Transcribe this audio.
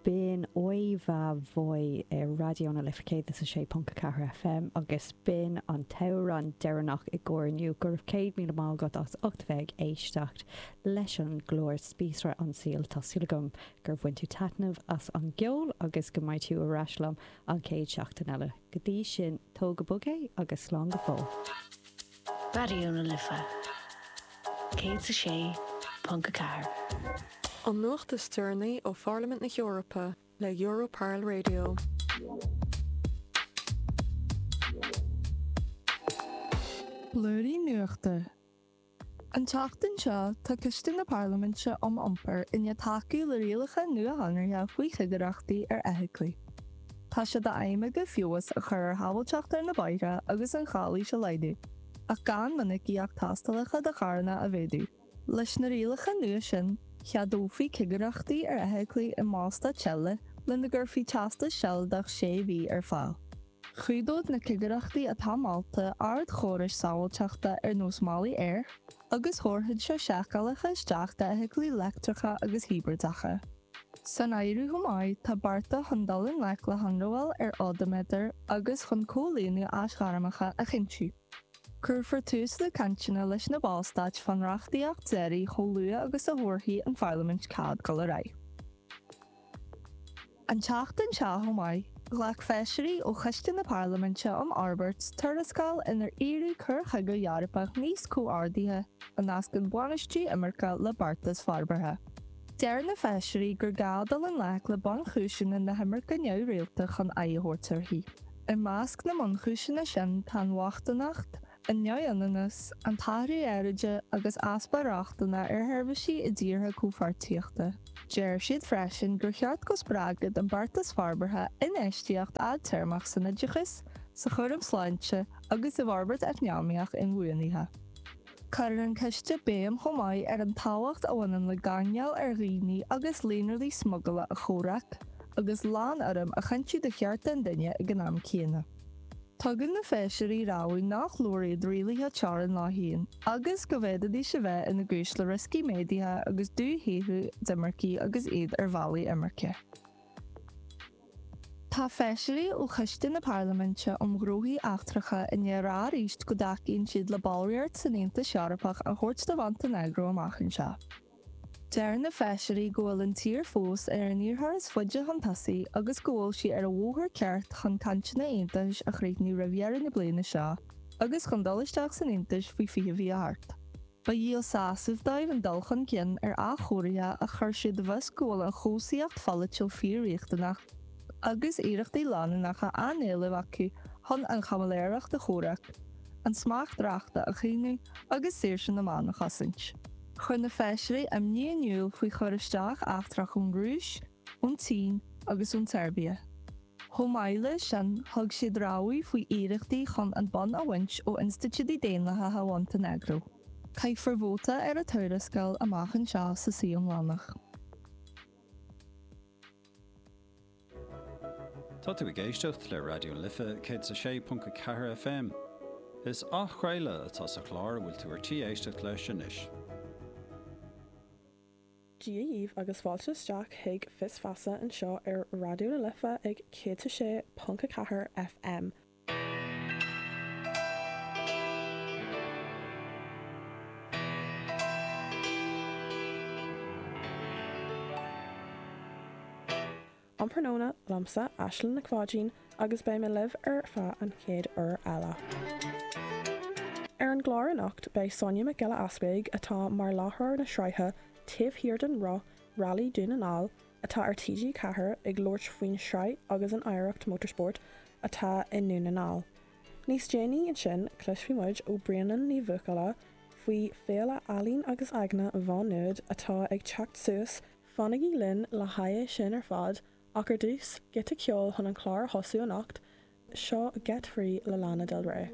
B'in Oi Va Voi ar Raidió na Life 106.4 FM agus b'in an t-amhrán deireanach i gcomhair inniu. Go raibh céad míle maith agat as ucht bheith ag éisteacht leis an gclár Spíosra an tSaoil. Tá súil agam gur bhain tú taitneamh as an gceol agus go mbeidh tú ar ais liom an chéad seachtain eile. Go dtí sin, tóg go bog é agus slán go fóill. Raidió na Life 106.4. An nuacht is deireanaí ó Pharlaimint na hEorpa le Europarl Radio. Blúirí nuachta. An tseachtain seo, tá Coiste na Parlaiminte um Iompar i ndiaidh tacú le rialacha nuashonraithe faoi chigireachtaí ar fheithiclí. Tá sé d'aidhm aige feabhas a chur ar shábháilteacht ar na bóithre agus an chalaois a laghdú, ach gan minicíocht tástálacha do charranna a mhéadú. Leis na rialacha nua sin, cheadófaí cigireachtaí ar fheithiclí i mBallstáit eile lena gcuirfí teastas sealadach sé mhí ar fáil. Chumhdódh na cigireachtaí atá molta ardchórais sábháilteachta ar nós málaí aeir, agus thabharfadh sé seiceálacha isteach d'fheithiclí leictreacha agus hibrideacha. San áireamh chomh maith tá bearta chun dul i ngleic le hionramháil ar odaiméadair agus chun comhlíonadh aisghairmeacha a chinntiú. Cuirfear tús le cainteanna leis na Ballstáit fán reachtaíocht deiridh chomh luath agus a thabharfaidh an Pharlaimint cead dul ar aghaidh. An tseachtain seo chomh maith, ghlac Feisirí ó Choiste na Parlaiminte um Fhorbairt tuarascáil inar iarradh cur chuige Eorpach níos comhordaithe a nascann bainistí imirce le beartas forbartha. Deir na Feisirí gur gá dul i ngleic le bunchúiseanna na himirce neamhrialta chun aghaidh a thabhairt uirthi. I measc na mbunchúiseanna sin tá an bhochtaineacht, an neamhionannas, an t-athrú aeráide agus easpa rochtana ar sheirbhísí i dtíortha comhpháirtíochta. Deir siad freisin gur cheart go spreagfadh an beartas forbartha infheistíocht fhadtéarmach san oideachas, sa chúram sláinte agus i bhforbairt eacnamaíoch inbhuanaithe. Cuireann an coiste béim chomh maith ar an tábhacht a bhaineann le gáinneáil ar dhaoine agus líonraí smuigleála a chomhrac, agus lánurraim a chinntiú do chearta an duine ag an am céanna. Tugann na Feisirí rabhadh nach leor iad rialuithe teorann leo féin, agus go bhféadfaidís a bheith ina gcúis le rioscaí méadaithe agus dúshaothrú d'imircigh agus iad ar bhealaí imirce. Tá feisirí ó Choiste na Parlaiminte um Ghnóthaí Eachtracha i ndiaidh a rá arís go dtacaíonn siad le ballraíocht san Aontas Eorpach a thabhairt do Mhontainéagró amach anseo. Deir na feisirí go bhfuil an tír fós ar an iarrthóir is faide chun tosaigh agus go bhfuil sí ar an bhóthar ceart chun cainteanna aontachais a chríochnú roimh dheireadh na bliana seo agus chun dul isteach san Aontas faoi 2028. Ba dhíol sásaimh dóibh an dul chun cinn ar athchóirithe ach chuir siad i bhfios go bhfuil an chobhsaíocht pholaitiúil fíor-riachtanach agus iarrachtaí leanúnacha á n-éileamh acu chun an chaimiléireacht a chomhrac, an smacht reachta a chaomhnú agus saoirse na meán a chosaint. Chuir na feisirí imní in iúl faoi chur isteach eachtrach ón Rúis, ón tSín agus ón tSeirbia. Chomh maith leis sin, thug siad rabhadh faoi iarrachtaí chun an bonn a bhaint ó institiúidí daonlathacha Mhontainéagró. Caithfear vóta ar an tuarascáil amach anseo sa suí iomlánach. Tá tú ag éisteacht le Raidió na Life 106.4 FM. Is athchraoladh atá sa chlár a bhfuil tú ar tí éisteacht leis anois. Dia daoibh agus fáilte isteach chuig Fios Feasa anseo ar Raidió na Life ag 106.4 FM. An tráthnóna liomsa, Aislinn Nic Pháidín, agus beidh mé libh ar feadh an chéad uair eile. Ar an gclár anocht beidh Sonia Nic Giolla Easpaig, atá mar láithreoir na sraithe Taobh Thiar den Roth Railí Dún na nGall atá ar TG4, ag labhairt faoin sraith agus an oidhreacht motorsport atá i nDún na nGall. Níos déanaí ansin cloisfidh muid ó Brianán Ní Bhuachalla faoi Féile Ealaín agus Aigne Mhá Nuad atá ag teacht suas Fanaigí linn le haghaidh sin ar fad, ach ar dtús, giota ceoil chun an clár a thosú anocht, seo Get Free le Lana Del Rey.